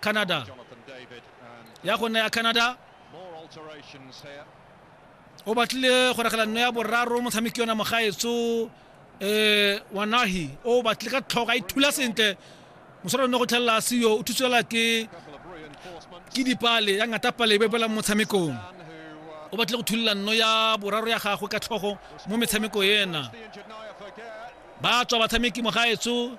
canada ya go nna ya canada o batlile go regela nno ya boraro motshameki yona mogaetso um wanahi o batlile ka tlhogo a ithula sentle moswara nne go tlhelela seyo o thutswela ke ke dipale ya ngata pale e bebela mo motshamekong o batlile go thulela nno ya boraro ya gagwe ka tlhogo mo metshameko ena ba tswa batshameki mogaetso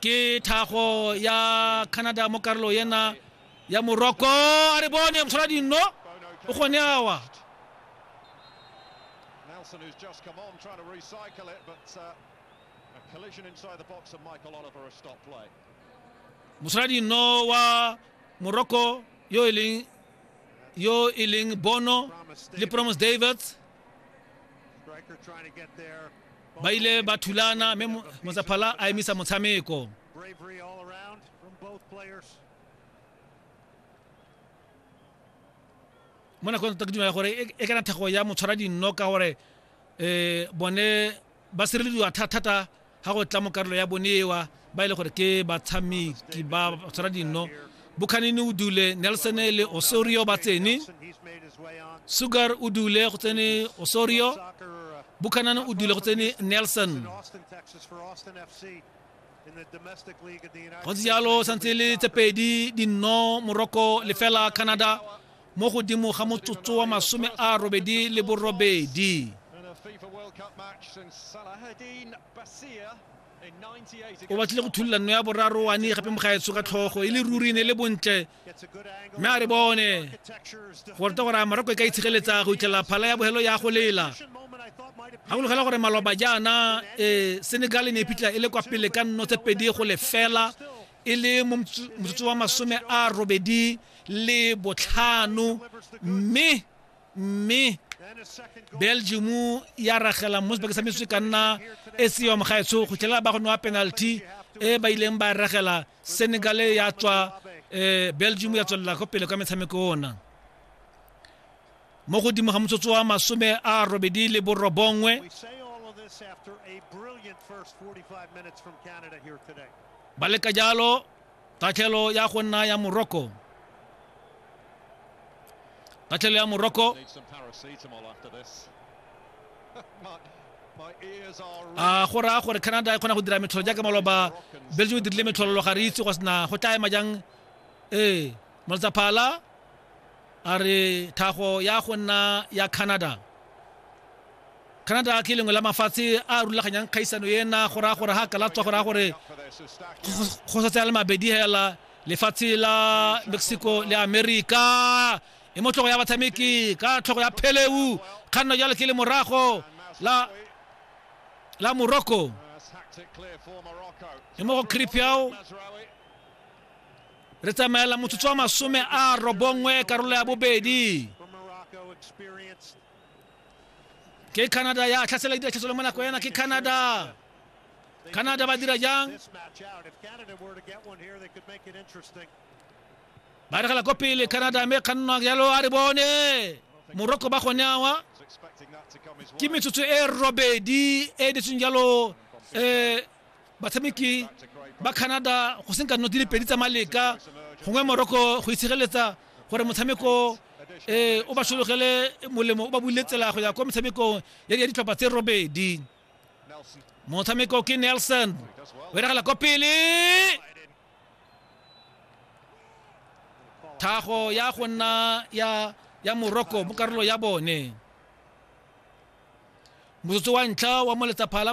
ke thago ya canada mo karolo ena ya moroko a re bone motlhola dinno o gone awa Nelson who's just come on trying to recycle it but uh, a collision inside the box and Michael Oliver a stop play motlhola dinno wa moroko yo e leng yo e leng bono le promise davids ba ile ba thulana mme motsaphala a emisa motshameko mo nakong tota ke dumela gore e, e kana thego ya motshwara dinno ka gore um bone ba sirelediwa thata ga go tla mo karolo ya bonewa ba e le gore ke batshameki ba tshwara dino bokhanini o dule nelson le osorio ba tsene sugar o dule go tsene osorio bukhanane o dule go tsene nelson go ntse jalo santse le tse pedi dinno morocco lefela canada mo godimo ga motsotso wa masome a robedi le borobedi o batlile go thulula nno ya boraro wane gape mo gaetso ka tlhogo e le ruri ne e le bontle mme a re bone gore te gore a morako e ka itshegeletsa go itlhela phala ya bogelo ya go lela ga go logela gore maloba jaana um senegal ne e phitlha e le kwa pele ka nno tse pedi go lefela e le mo motsotso wa masome a robedi le botlhano mme mme belgium ya ragela mo sebaka sa metsotso ka nna e se yom ga etsho go tlela ba go nwa penalty e ba ileng ba ragela senegal ya tswa eh, belgium ya tswelela go pele ka metshameko ona mo godimo ga motsotso wa masome a robedi le borobongwe ba leka jalo Tatlhelo ya go nna ya moroko. Tatlhelo ya moroko. a go raya gore canada e kgona go dira metlholo jaaka maloba belgium e dirile metlhololo ga re itse go sena go tla ema jang ee moltsaphala a re thago ya go nna ya canada Canada ke lengwe la mafatshe a rulaganyang kgaisano ena go raya gore ga ka latswa go raya gore go sa tsaya le mabedi hela lefatshe la Mexico le America e motlogo ya batshameki ka tlhogo ya pheleu kganno jalo ke le morago la la Morocco e mo go Kripiao re tsamaela motsotso wa masome a robongwe karolo ya bobedi ke canada ya tlhasela dira tshesolo mo nako yana ke canada canada ba dira jang ba regela ko pele canada mme kgannwa jalo a re bone morocco ba gone awa ke metsotso e robedi e ditseng jalo um Batshameki ba Canada go senka nno di le pedi tsa maleka gongwe Morocco go itshegeletsa gore motshameko um o ba sologele molemo o ba buile tsela go ya kwa motshamekong ya ditlhopha tse robedi motshameko ke nelson o eragala kwa pele thago ya go nna ya ya morocco mo karolo ya bone motsotso wa ntlha wa moletsa phala